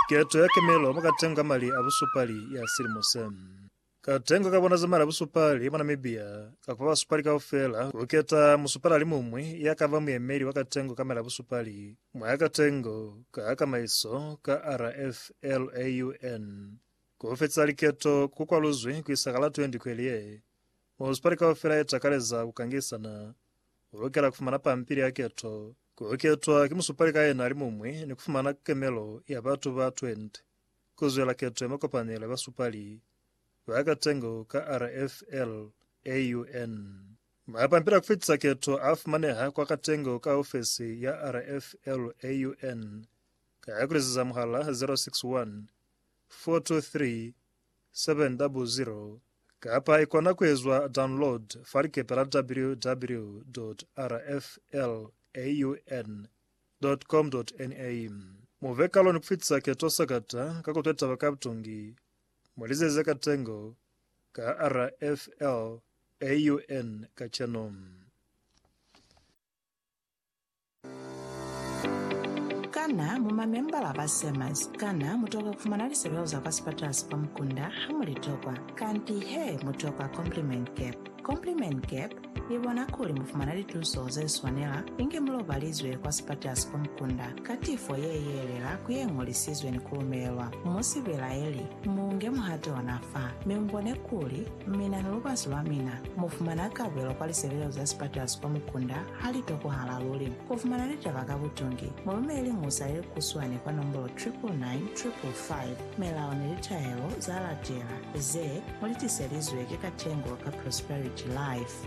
Keto ya kemelo mukatengo ka mali a busupali ya silimo se. Katengo ka bona za mali a busupali mwa Namibia ka kuba basupali kaufela kuketa musupali alimuñwi ya kaba muyemeli wa katengo ka mali a busupali mwa katengo ka kamaiso ka RFLAUN. Kufetisa liketo ku kwaluzwi kuisa ka la 20 kweli ye. Munisipali kaufela ye takaleza ku kangisana. U lukela ku fumana pampili ya keto, ku ketwa ki musupali ka yena alimuñwi ni ku fumana kemelo ya batu ba 20 ku zwela keto ya makopanelo ya basupali ba katengo ka RFL AUN. Mapampili a ku fitisa keto a fumaneha kwa katengo ka ofesi ya RFL AUN ka ku liziza muhala 061 423 700 kapa i kona ku ezwa download fa likepe la www.rflaun.com.na. Mu be kalo ni ku fitisa keto sakata ka ku twa taba ka butungi. Mu li zeze ka tengo ka rflaun kacenu. Kana mu mamembala ba SEMAS? Kana mu tokwa ku fumana lisebeo za kwa sipatala sa kwa mukunda ha mu li tokwa? Kanti he, mu tokwa Compliment Cap. Compliment Cap i bona kuli mu fumana lituso ze swanela inge mu lobalizwe kwa sipatala sa kwa mukunda ka tifo ye yeelela ku ye ñolisizwe ni ku lumelelwa. Mu si belaeli, mu nge muhato ona fa, mi mu bone kuli mina ni lubasi lwa mina mu fumana kabelo kwa lisebeo za sipatala sa kwa mukunda Ha li tokwahala luli ku fumana litaba ka butungi, mu lumeleli musa ye kuswani kwa nombolo 999555, Milao ni Litahelo za Latela, ze mu li tiselizwe ki Katengo ka Prosperity Life.